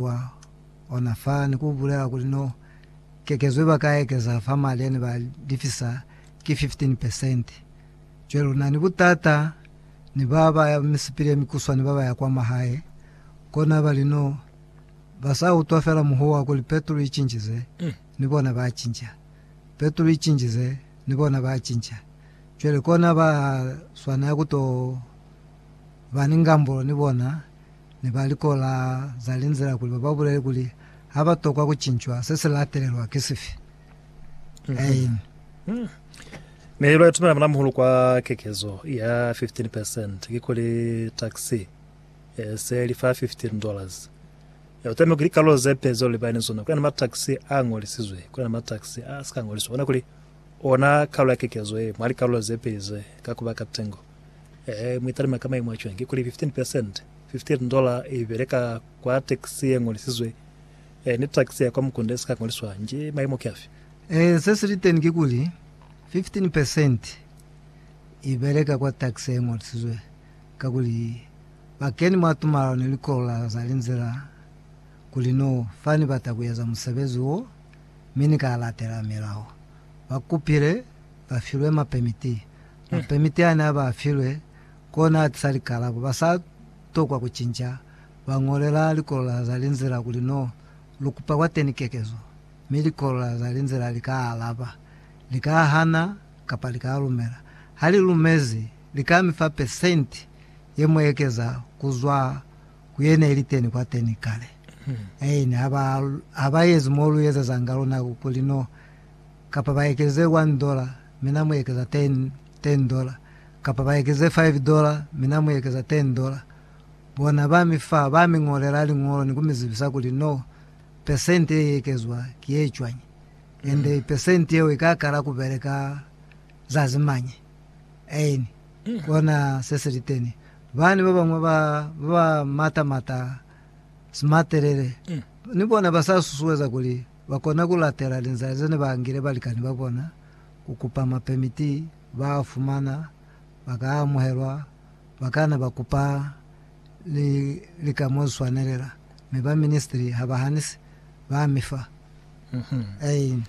Kwa ona fa ni ku bulela kuli no kekezo iba ka ekeza fa mali yane ba lifisa ki 15 percent. Cwale luna ni butata ni ba ba ya misipili ye mikuswani ba ba ya kwa mahae, kona bali no ba sa utwa fela muhuwa wa kuli petrol i cinjize, ni bona ba cinca. Petrol i cinjize, ni bona ba cinca. Cwale kona ba swanela ku to ba ni ngambulo ni bona. ne ba likola za linzila kuli ba ba bulele kuli ha ba tokwa ku cincwa se si latelelwa ki sifi. Aim. Ne ba itumela muna muhulu kwa kekezo ya 15 percent, kikuli taxi e se li fa 15 dollars. E uteme ku likalo ze peli zeo libani ni zona, kulena mataxi a ngolisizwe, kulena mataxi a si ka ngoliswa. Bona kuli ona kalo ya kekezo ye mwa likalo ze peli ze ka kuba ka tengo. Ee, mu italime ka maimu a cwani. Kikuli 15 percent, fifteen dollar, i bele ka kwa tax ye ñolisizwe, ee, ni tax ya kwa mukunda ye si ka ñoliswa hanje. Maimu ki afi? Ee, se si li teni kikuli, 15 percent, i bele ka kwa tax ye ñolisizwe, kakuli ba keni mwa tumalano ni likolo la za linzila kuli no fa ni bata ku eza musebezi wo, mi ni ka latela milao. Ba kupile ba filwe mapemiti. Mapemiti ane a ba filwe kona a tisa likalabo. Ba sa tokwa ku cinca, ba ñolela likolola za linzila kuli no lu kupa kwateni kekezo, mi likolola za linzila li ka alaba. Li ka hana kapa li ka lumela. Ha li lumezi, li ka mi fa pesenti ye mu ekeza ku zwa ku ye ne li teni kwateni kale. Aine ha ba ezi mo lu ezezanga luna kuli no kapa ba ekeze one dollar, mi Na mu ekeza ten, ten dollar, kapa ba ekeze five dollar, mi Na mu ekeza ten dollar. Bona, ba mi fa, ba mi ñolela liñolo ni ku mi zibisa kuli, No, percent ye i ekezwa ki ye cwañi, ende percent yeo i ka kala ku beleka zazi mañi. Aini, kona se si li teni. Bani ba bañwi ba, ba ba mata-mata, smatelele, ni bona ba sa susueza kuli, Ba kona ku latela linzila ze ne ba angile balikani ba bona, ku kupa mapemiti, ba a fumana, ba ka amuhelwa, ba kana ba kupa ni lika mo li swanelela, mi ba ministri ha ba hanisi, ba mi fa. Ein.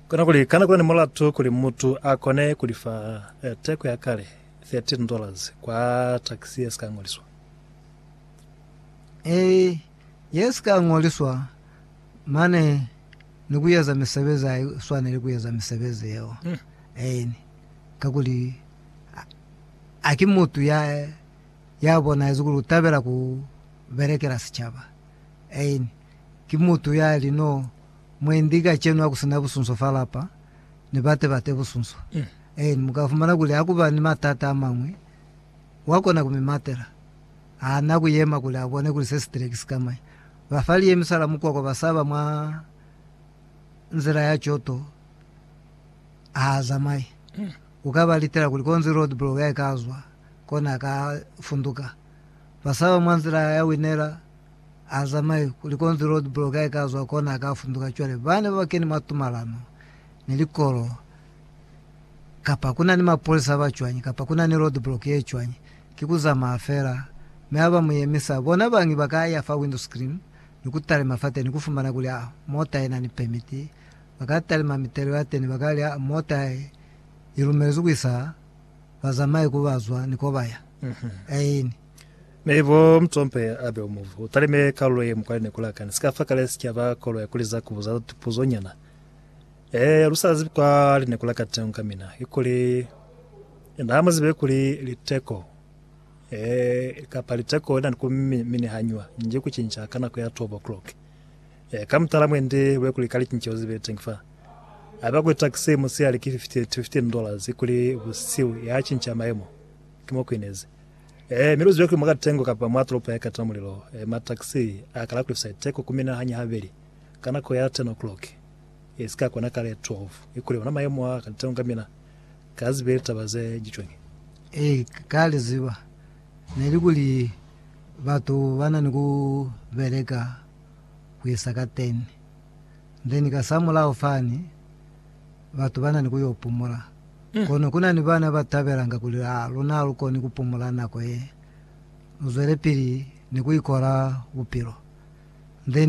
Kona kuli, Kana kuli ni mulatu kuli mutu a kone ku li fa teko ya kale, thirteen dollars, kwa takisi ye si ka ñoliswa? Ei, ye si ka ñoliswa. Mane ni ku eza misebezi ha i swaneli ku eza misebezi yeo. Eeni, kakuli ha ki mutu ya, ya bonahezi kuli u tabela ku belekela sicaba. Eeni, ki mutu ya li no, Mwendi, kacenu ha ku si na busunso fa lapa, ni bate bate busunso. Eeni, mu ka fumana kuli ha ku ba ni matata a mañwi, wa kona ku mi matela. Ha na ku yema kuli a bone kuli se si tile ki sikamanya. Ba fa liemisa la mukwakwa ba saba mwa nzila ya coto ha zamaye. Ku ka ba litela kuli konzi roadblock ya ka zwa, kona a ka funduka. Ba saba mwa nzila ya winela ha zamaye kuli konzi roadblock ya ka zwa, kona a ka funduka. Cwale bane ba ba keni mwa tumalano ni likolo. kapa kuna ni mapolisa aba cwañi, kapa kuna ni road block ye cwañi, ki ku zamaya fela, mi ha ba mu yemisa. Bona bañi ba ka ya fa window screen ni ku talima fateni, ku fumana kuli a mota ye na ni permit. Ba ka talima mitelo ya teni, ba ka li, a mota ye i lumelezwi ku isa bazamai ku ba zwa ni ko ba ya. Aini. Mi bo Mtsompe abe u muvu, u talime kalulo ye mukwale ni ku lakani. Sika fa kale si caba koloi kuli za ku buza tupuzo nyana. Eeya, lu sa zibi kwa lineko la katengo ka mina, ki kuli, na ha mu zibe kuli liteko, ee, kapa liteko li na ni ku mi, minihanywa nji ku cinca ka nako ya twelve o'clock. Ee, ka mutala mwendi lube kuli ka licinceho ze zibe teñi fa. Haiba kuli taxi musihali ki fifty to fifteen dollars, ki kuli busihu ya cinca mayemo. Ki mo ku inezi. Ee, mi lu zibe kuli mwa katengo kapa mwa tolopo ya ikatela mulilo, ee, mataxi a kala ku lifisa liteko ku mina hañi habeli ka nako ya ten o'clock. e si ka kona kale 12 i kule ona mayemo a ka litaunga mina ka zibe litaba ze jicwenge. E ka li ziba ne li kuli batu ba na ni ku beleka ku isa ka 10 then ka sa mulao fani batu ba na ni ku yo pumula. Kono ku na ni bana ba tabelanga kuli a luna ha lu koni ku pumula nako ye, lu zwelepili ni ku ikola bupilo then